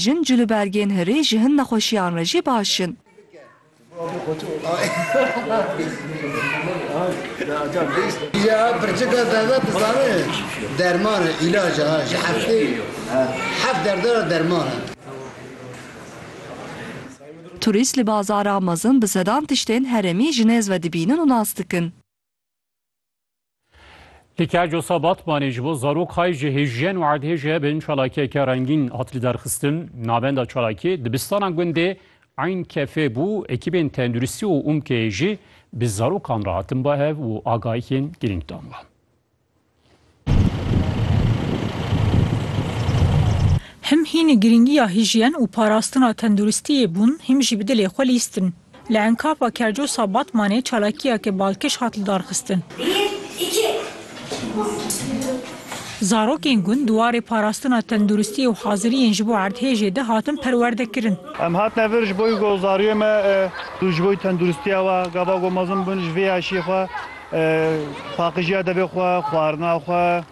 Jin cil û bergên hirê ji hin nexweşiyan re jî baş in. Turîst li bazara mezin bi sedan tiştên herêmî ji nêz ve dibînin û nas dikin. Lika Cosa Batmanê ji bo zarok hay ji hêjiyen û erdhêjiye bin çalakiyeke rengîn hat lidarxistin. Navenda çalakiyê dibistana gundê Eyn Kefê bû, ekîbên tenduristî û UMK'ê jî bi zarokan re hatin bahev û agahiyên girîng dan wan. Him hînî girîngiya hîjiyen û parastina tenduristiyê bûn, hîm jî bi dilê xwe lîstin. Li enkava Kercosa Batmanê çalakiyeke balkêş hat lidarxistin. Zarokên gund di warê parastina tenduristiyê û haziriyên ji bo erdhêjê de hatin perwerdekirin. Em hatine vir ji bo wî ku zariyê me ku ji bo tenduristiya we gava ku mezin bûn ji vê yaşiyê xwe paqijiya devê xwe, xwarina xwe,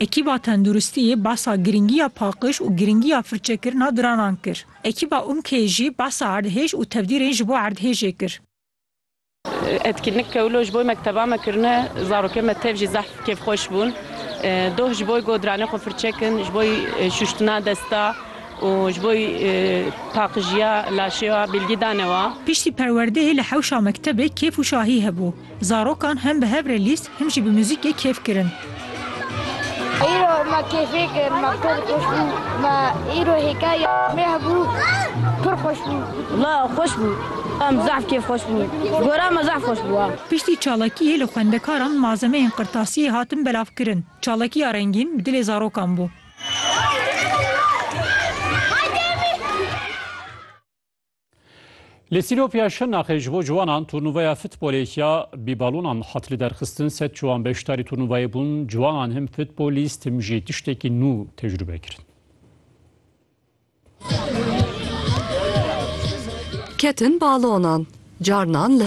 Ekîba Tenduristiyê behsa girîngiya paqiş û girîngiya firçekirina diranan kir. Ekîba UMK'ê jî behsa erdhêj û tevdîrên ji bo erdhêjê kir. Etkinlik ke wilo ji bo mekteba me kirine, zarokên me tev jî zehf kêfxweş bûn. Doh ji bo ku diranên xwe firçe kin, ji bo şûştina desta û ji bo paqijiya laşê wa bilgî dane wa. Piştî perwerdeyê li hewşa mektebê kêf û şahî hebû. Zarokan hem bi hev re lîst him jî bi muzîkê kêf kirin. Îro me kêfê kir, me pir xweş bû. Me îro hêkaya me hebû, pir xweş bû. Wla xweş bû. Em zehf kêf xweş bûn. Gora me zehf xweş bû. Piştî çalakiyê li xwendekaran malzemeyên qirtasiyê hatin belavkirin. Çalakiya rengîn bi dilê zarokan bû. Li Sînopya Şirnaxê ji bo ciwanan turnûveya futbolê ya bîbalonan hat li derxistin. Sed ciwan beşdarî turnûveyê bûn. Ciwanan him futbolîst him jî tiştekî nû tecrûbe kirin. Ketin balonan. Carnan li